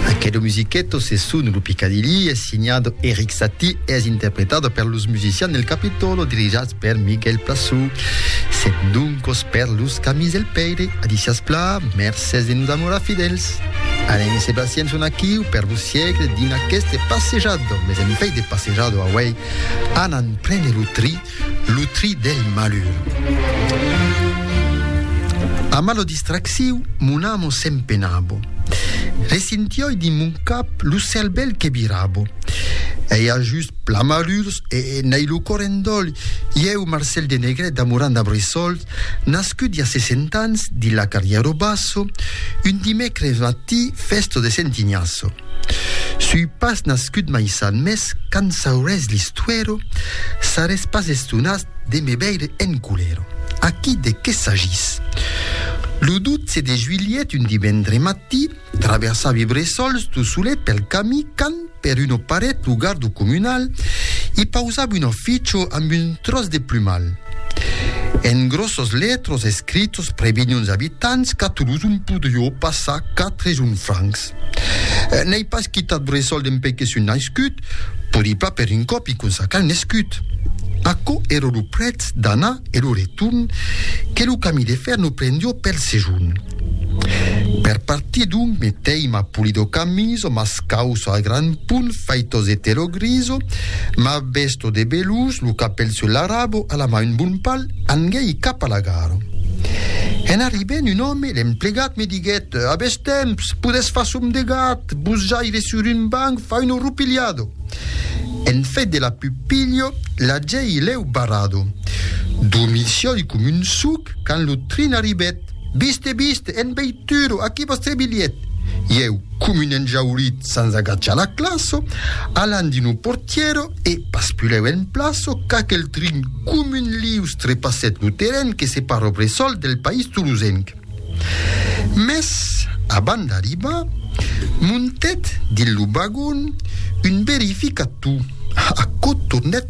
Aquelo musiqueto se sun lo Picadilly, es signado Eric Saty e es interpretado per los musicians del Capitolo dirigats per Miguel Plassou. Sèt doncos per los camis del Pèire, adicias pla, mercès de nos amorar fidèls. Alain e Sébastien son aquiu per vos siegle dins aqueste passejado, mes en fei de passejado auei, anant prene lo tri Lo tri del malur. A malo distracciu, mon amo s'empenabo. Resintioi dins mon cap lo cervèl que virabo. Ei a just pla malurs e n'ei lo cor en dòl. Ieu, Marcèl de Negret, damorant a Bressòl, Nascut i a 60 ans dins la Carrièro Basso, un dimècres matí fèsto de Sentiniasso. Sui pas nascut mai san mès quand saurès l'istuèro, sarès pas estonat de me veire en culèro. Aquí de qué s'agís? Lo 12 de juilhet, un dimendre matí, Traversar vi bressols tu solet pel cami quand per una paret lo gardo comunal i pausab un afficho amb un tròç de plumal. En grossos letros escritos previnhons abitants qu'a Toulouse un podrió passar quatre jun francs. N'ai pas quitat bressol dempè que sun naiscut, podi pas per un còp i consacar nescut. Aquò èra lo prètz d'anar e lo retorn que lo cami de fèr no prendió pel sejorn. Per partir d'un meteima polidocamiso mas causo a gran punt faitos eterogriso, ma vesto de belus lo capèl sul larabo a la ma un bon pal, anguèi cap a la gara. En arribènt un òme, l'emplegat, me diguèt, A bes temps, podètz far som de gat, vos jaire sur un banc, far un orrupilhado. En fait de la pupilho, l'agèi lèu barrado. Dormir siòi com un suc quand lo trin arribèt. Vist e vist, en veituro, aquí vòstre bilhet! E eu, com un enjaurit sens agachar la claço, alan dins lo portièro e, paspulèu en plaço, qu'aquel trin com un lius trepassèt lo terren que separa lo bressòl del país tolosenc. Mès, abans d'arribar, montèt dins lo vagon un verificator, aquò tornèt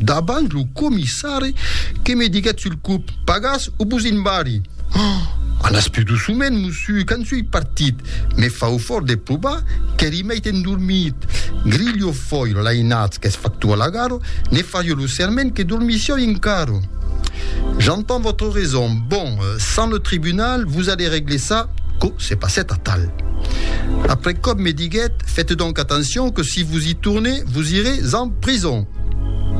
Davant lo comissari que me diguèt sul cop, Pagas o vos in barri! Oh! Alas pus doçument, mossu, quand soi partit! Me fau fòrt de provar qu'èri mèit endormit! Grilho foi lo lainatz qu'es factor a la garo, ne fario lo serment que dormissieu encara! J'entends votre raison, bon, sans le tribunal, vos allez régler ça, quò se passèt atal. Après còp me diguèt, Fète donc atencion que si vos i tornez, vos irez en prison!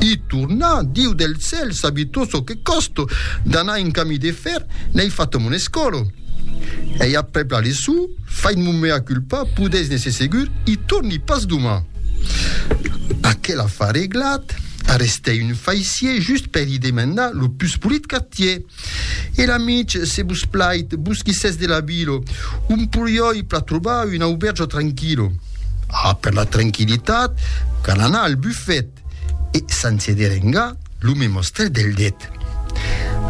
I torna, Diu del cèl, sabi tot çò que còsto d'anar en camí de fer, n'èi fat mon escòlo. Ei aprèp la leço, fait mon mea culpa, podèis n'èsser segur, i torni pas doma. Aquela fa reglat, arrestèi un faissier just per i demandar lo pus polit qu'atier. E la mitj, se vos plait, vos quisètz de la vilo, un puriòi pla trobar un aubèrge tranquilo. A per la tranquilitat, cal anar al bufet, e sense derengar, lo me mostrèt del det.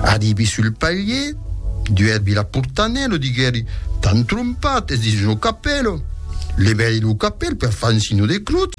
Arribi sul palier, duèrbi la portanèla, lo diguèri, t'an trompat, es dins lo capèlo. Levèri lo capèl per far un signo de crotz,